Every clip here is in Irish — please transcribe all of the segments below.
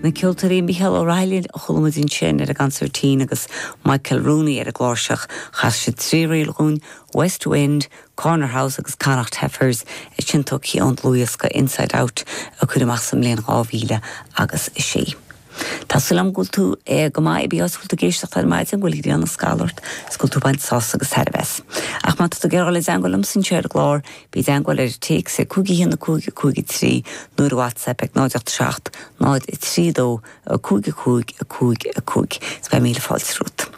Na ceoltóirí Micheál Ó Raghallaigh a chuala muid ansin ar an gconsairtín agus Michael Rooney ar an gcláirseach, chas siad trí ríl dhúinn, West Wind, Corner House agus Connacht Heifers, a tháinig ón dlúthdhiosca Inside Out a cuireadh amach sa mbliain 2006. Tá súil agam go bhfuil tú go maith, cibé áit a bhfuil tú ag éisteacht ar maidin, go bhfuil grian ag scalladh ort is go bhfuil tú ag baint sásamh agus tairbhe as. Ach má tá tú ag iarraidh dul i dteangmháil liomsa anseo ar an gclár, bí i dteangmháil ar an téacs ag 51553 nó ar WhatsApp ag 0 87 0 32 55 55 is beidh míle fáilte romhat.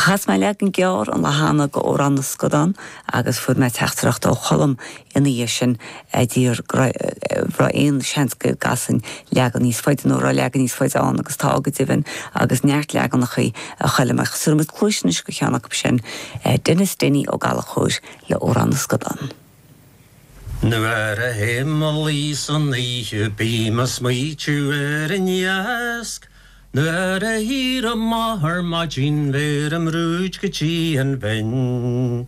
Chas mé leagan gearr an lá cheana d'Amhrán na Scadán agus fuair mé teachtaireacht ó Cholm, Ina dhiaidh sin, ag fiafraí an raibh aon seans go gcasfainn leagan níos faide nó a raibh leagan níos faide ann agus tá go deimhin agus neart leaganachaí a chuala mé. Tabharfaidh muid cluais anois do cheann acu sin, Denis Denny Ó Gallchóir le hAmhrán na Scadán. Nuair a théim a luí san oíche bím a' smaoitiú ar an iasc Nuair a éirím amach ar maidin bheirim rúid go dtí an bhinn